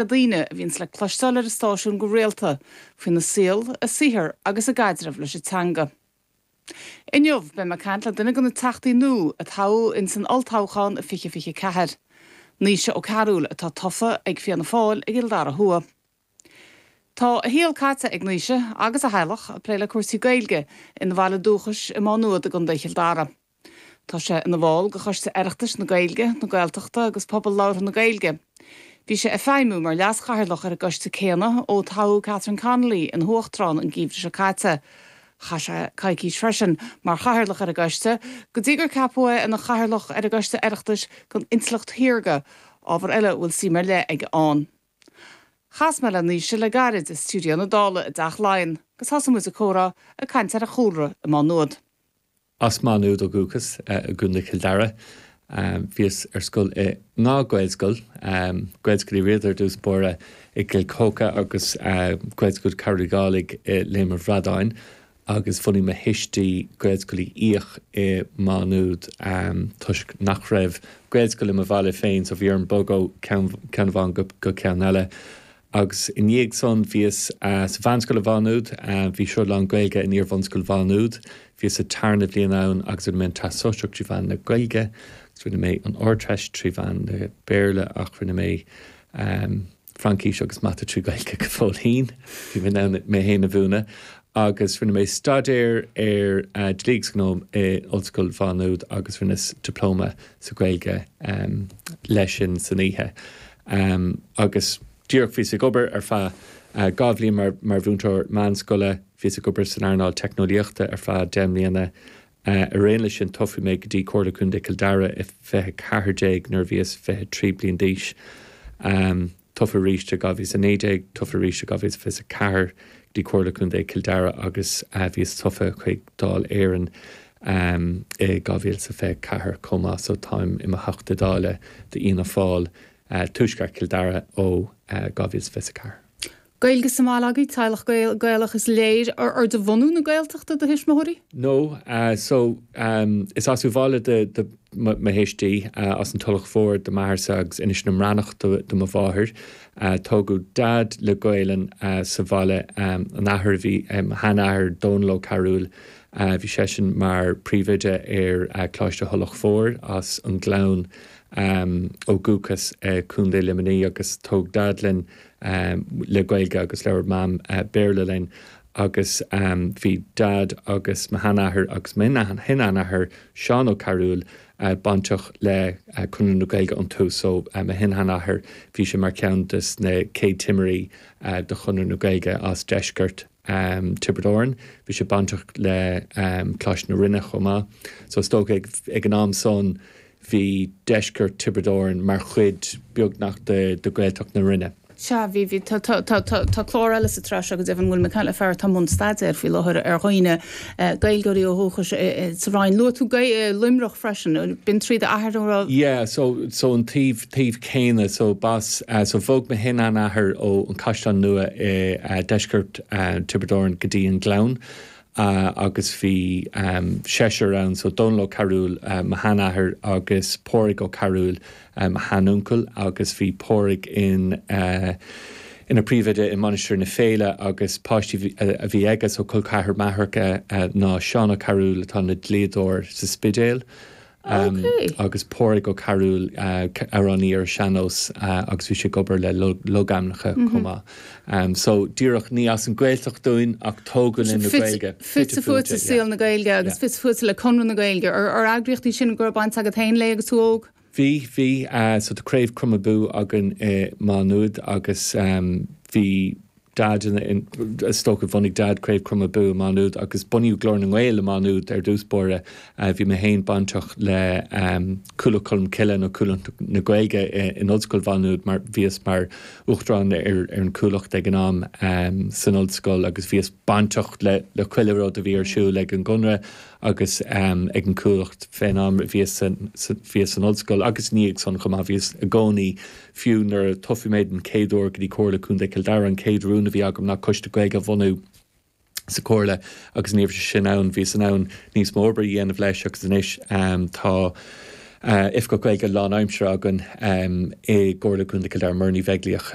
na daoine a bhíonns le cloisteáil ar an stáisiún go rialta faoina saol, a saothar agus a gcaidreamh leis an teanga. Inniu, beidh mé ag caint le duine de na teachtaí nua a toghadh ins an Olltoghchán 2024, Naoise Ó Cearúil atá tofa ag Fianna Fáil i gCill Dara Thuaidh. Tá a shaol caite ag Naoise, agus a theaghlach, ag plé le cúrsaí Gaeilge ina bhaile dúchais i Má Nuad i gContae Chill Dara. Tá sé ina bhall de Choiste Oireachtais na Gaeilge, na Gaeltachta agus Pobal Labhartha na Gaeilge. Bhí sé ag feidhmiú mar leaschathaoirleach ar an gcoiste céanna ó toghadh Catherine Connolly ina huachtarán an geimhreadh seo caite. Chaith sé coicís freisin mar chathaoirleach ar an gcoiste go dtí gur ceapadh é ina chathaoirleach ar an gCoiste Oireachtais don Intleacht Shaorga, ábhar eile a bhfuil suim ar leith aige ann. Chas mé le Naoise le gairid i stiúideo na Dála i dTeach Laighean agus thosaigh muid an comhrá ag caint ar a chúlra i Má Nuad. As Maigh Nuad ó dhúchas i gContae Chill Dara. Bhíos ar scoil in dhá Ghaelscoil, Gaelscoil Uí Riada ar dtús báire i gCill Choca agus Gaelscoil Chearbhaill Uí Dhálaigh i Léim an Bhradáin agus bhunaigh mo thuistí Gaelscoil Uí Fhiaich i Maigh Nuad toisc nach raibh Gaelscoil i mo bhaile féin so bhí orm bogadh ó cheann amháin go ceann eile. Agus i ndiaidh san bhíos sa Mheánscoil i Mhá Nuad, bhí sruth lán-Ghaeilge in Iarbhunscoil Mhá Nuad, bhíos sa tarna bhliain ann agus rinne mé an Teastas Sóisearach trí mheán na Gaeilge agus rinne mé an Ardteist trí mheán na Béarla ach rinne mé Fraincis agus Mata trí Gaeilge go fóill fhéin, bhí mé in ann mé fhéin a mhúineadh! Agus rinne mé staidéar ar Dlí agus Gnó i Ollscoil Mhá Nuad agus rinneas Diplóma sa Gaeilge leis sin san oíche. Um, agus díreach, bhíos ag obair ar feadh, uh, dhá bhliain mar, mar mhúinteoir meánscoile, bhíos ag obair san earnáil teicneolaíochta ar feadh deich mbliana. Uh, ar aon leis sin, toghadh mé go dtí Comhairle Contae Cill Dara i fiche ceathair déag nuair a bhíos fiche trí bliain d'aois. Um, tofa arís i dhá mhíle is a naoi déag, tofa arís i dhá mhíle is fiche is a ceathair go dtí Comhairle Contae Cill Dara agus, uh, bhíos tofa chuig Dáil Éireann. I 2024 chomh maith so táim i mo Theachta Dála d'Fhianna Fáil, Tuaisceart Chill Dara ó 2024. Gaeilge sa mbaile agaibh, teaghlach Gael, Gaelach is léir. Ar de bhunadh na Gaeltachta do thuismitheoirí? No, so is as Uíbh Fhailí do mo thuistí, as an Tulach Mhór do m'athairsa agus Inis na mBreatnach do mo mháthair. Tógadh Dad le Gaelainn sa bhaile, an athair a bhí, mo sheanathair Dónal Ó Cearúil, Bhí seisean mar príomhoide ar Coláiste Thulach Mhóir as an Gleann ó dhúchas i Contae Luimnigh agus tóg Dad sinn le Gaeilge agus labhair Mam Béarla linn agus bhí Dad agus mo sheanathair agus mo shin-sheanathair Seán Ó Cearúil bainteach le Conradh na Gaeilge ón tús so mo shin-sheanathair bhí sé mar cheann des na chéad timirí de Chonradh na Gaeilge as deisceart um Tiobraid Árann. Bhí sé bainteach le um Coláiste na Rinne chomh maith. So is dócha ag, ag an am san bhí deisceart Tiobraid Árann mar chuid beagnach de, de Gaeltacht na Rinne. Sea, bhí, bhí, tá, tá, tá, tá, tá clár eile sa tsraith seo, go deimhin, bhfuil mé ag caint le fear atá i mbun staidéir faoi láthair ar dhaoine, eh, Gaeilgeoirí ó dhúchas i, i, sa Rinn. Luaigh tú Gae- eh, Luimneach freisin, eh, b'in trí d'athair an raibh. Yeah, so, so an taobh, taobh céanna so bas so bhog mo shin-sheanathair ón Caisleán Nua i deisceart Tiobraid Árann go dtí an Gleann agus bhí seisean ann so Dónall Ó Cearbhaill mo sheanathair agus Pádraig Ó Cearbhaill mo sheanuncail agus bhí Pádraig in ina phríomhoide i Mainistir na Féile agus páistí a bhí aige so col ceathar m'athar ná Seán Ó Cearbhaill atá ina dlíodóir sa Spidéal agus Pádraig Ó Cearbhaill, amhránaí ar sean-nós agus bhí sé ag obair le logainmneacha chomh maith. So díreach ní as an Gaeltacht dúinn ach tógadh le Gaeilge. Fite fuaite i saol na Gaeilge agus fite fuaite le Conradh na Gaeilge. Ar eagraíocht í sin go raibh baint agat féin léi agus tú óg? Bhí, bhí. So tá Craobh Crom Abú againn i Maigh Nuad agus bhí, Dad ina stócach. Bhunaigh Dad Craobh Chrom Abú i Maigh Nuad agus bunaíodh Glór na nGael i Maigh Nuad ar dtús báire. Bhí mé féin bainteach le Cuallacht Cholm Cille nó Cuallacht na Gaeilge in Ollscoil Mhaigh Nuad mar bhíos mar uachtarán ar an gCuallacht ag an am san ollscoil agus bhíos bainteach le chuile rud a bhí ar siúl ag an gConradh agus ag an Chuallacht fén am a bhíos san ollscoil agus i ndiaidh san chomh maith. Bhíos i gcónaí Fiú nuair a toghadh mé den chéad uair go dtí Comhairle Contae Chill Dara, an chéad rún a bhí agam ná coiste Gaeilge a bhunú sa Chomhairle agus ní raibh sé sin ann. Bhíos in ann níos mó oibre a dhéanamh leis agus anois tá Oifigeach Gaeilge lánaimseartha againn i gComhairle Contae Chill Dara, Muireann Ní Bheaglaoich.